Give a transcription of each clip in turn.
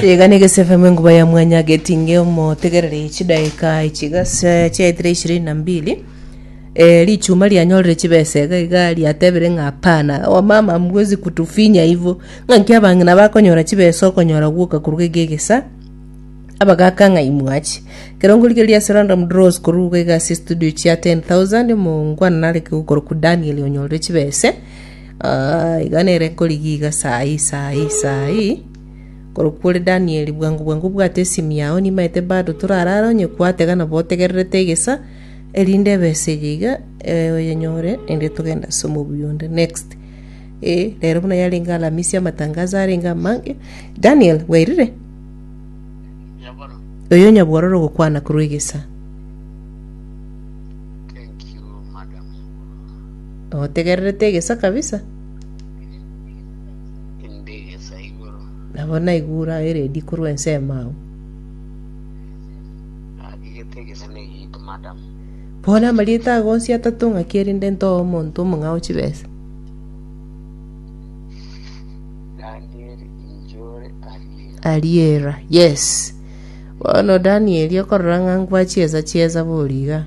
Iga negesefemu enguba ya mwanya getinge omotegereri chidaeka echiga se- chiaetire ishirini na mbili Eh, richuma rianyorire chibesa iga iga riatebire ng'a hapana wamama hamwezi kutufinya hivo ng'a nki abang'ina bakonyora chibesa okonyora gwoka koruga iga egesa abagaka ng'a imwachi kerongori keria ase random draws koruga iga ase estudio chia 10000 omongwana nareke gokorokwa daniel onyorire chibese Aa, iga nere korigiiga saa ii, saa ii, saa ii. Korokwo ore Danieli, bwango bwango obwate esimi yao, nimaete bado torare are onye kwatega nabo otegererete egesa, erinde ebesa eye iga eh, oyenyore, erinde togende ase omobui onde. Next. Eh, rero buna yarenge Alamisi amatangazo arenge amange, Daniel, bwairire? Nyaboro, Oyo nyabwororo ogokwana korwa egesa. Otegererete egesa kabisa? Inde egesa igoro. Nabo naigure aye ready korwa ensemo agwo. Agigete egesa na egiito, madam. Bono amarieta ago onsi atato ng'aki erinde ntoe omonto omong'ao chibesa? Daniel Injore Ariera. Ariera, yes. Bono Danieli okorora ng'a ngwa chiesa chiesa bori iga.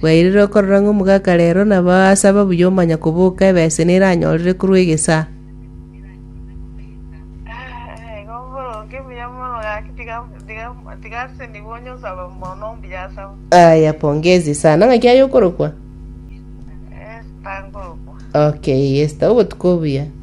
Bwairire okorora ng'a omogaka reero nabo asaba buya omanya koboka ebesa ene eranyorire korwa egesaa. Aya, pongezi sana. Ng'a kiaye okorokwa? Okay, Esther, obotuko obuya.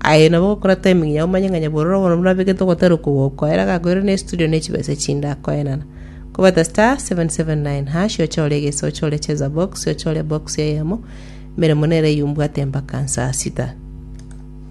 Aye nabo gokora timing yao omanye ng'a nyabororo bono nabegete ogotera okogoko ere agakoirana ne studio ne chibesa echinde akoenana. Kobeta star 779# ochore egeso ochore cheza box ochore box eyemo emeremo nere eyio mbwate mpaka saa sita.